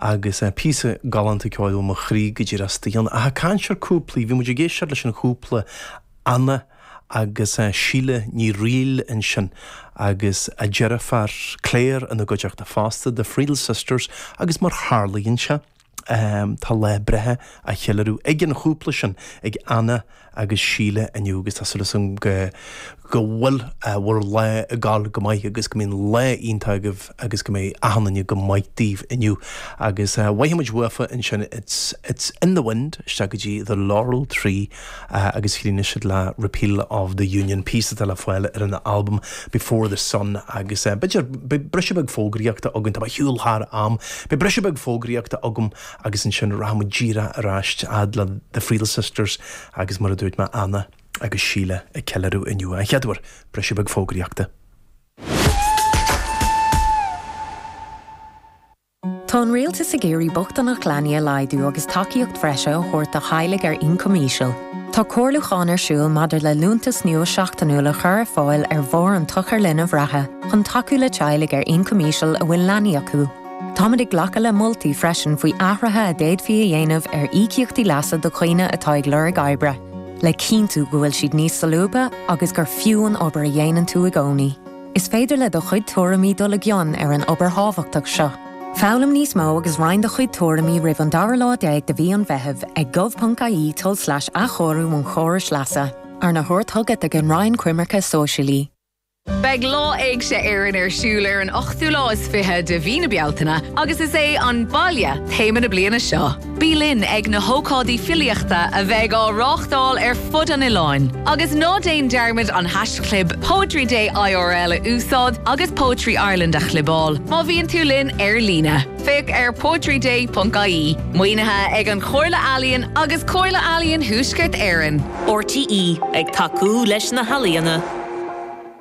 Agus píosa galánta ceoil a bhfuil mo chroí go dtí Ros Daoin. Ach ag caint ar chúplaí, bhí muid ag éisteacht leis an chúpla, Anna agus Síle Friel ansin, agus a ndeirfiúr Claire ina gcuideachta fosta, The Friel Sisters, agus mar tharlaíonn sé, tá lá breithe á cheiliúradh ag an chúpla sin, ag Anna agus Síle inniu, agus tá súil agam go bhfuil bhur lá ag gabháil go maith agus go mbíonn lá iontach agaibh agus go mbeidh achan duine go maith daoibh inniu agus gheobhaidh muid uafa ansin It's in the wind isteach go dtí The Laurel Tree agus críochnóidh siad le Repeal of the Union, píosa atá le fáil ar an albam Before the Sun agus b'fhéidir beidh briseadh beag fógraíochta agam, tá mé ag siúl thar am, beidh briseadh beag fógraíochta agam. agus ansin rachaimid díreach ar ais a fhad le The Friel Sisters agus mar a dúirt mé Anna agus Síle ag ceiliúradh inniu. a chéaduair, briseadh beag fógraíochta. Tá an Rialtas ag iarraidh bochtaineacht leanaí a laghdú agus tacaíocht bhreise a thabhairt do theaghlaigh ar ioncam íseal. Tá comhairliúchán ar siúl maidir le liúntas nua seachtainiúil a chur ar fáil ar bharr an tsochair linbh reatha chun tacú le teaghlaigh ar ioncam íseal a bhfuil leanaí acu. Táimid ag glacadh le moltaí freisin faoi athruithe a d'fhéadfaí a dhéanamh ar íocaíochtaí leasa do dhaoine atá ag lorg oibre, le cinntiú go bhfuil siad níos solúbtha agus gur fiú an obair a dhéanann tú i gcónaí. Is féidir le do chuid tuairimí dul i gcion ar an obair thábhachtach seo. Foghlaim níos mó agus roinn do chuid tuairimí roimh an dara lá déag de mhí an Mheithimh ag gov.ie tulslais athchóiriú an chórais leasa, arna thabhairt chugat ag an Roinn Coimirce Sóisialaí. Beidh Lá Éigse Éireann ar siúl ar an ochtú lá is fiche de mhí na Bealtaine agus is é 'An Baile' téama na bliana seo. Bí linn ag na hócáidí filíochta a bheidh á reáchtáil ar fud an oileáin agus ná déan dearmad an haischlib Poetry Day IRL a úsáid agus Poetry Ireland a chlibeáil má bhíonn tú linn ar líne. Féach ar poetryday.ie. Maoinithe ag An Chomhairle Ealaíon agus Comhairle Ealaíon Thuaisceart Éireann. RTÉ, ag tacú leis na healaíona.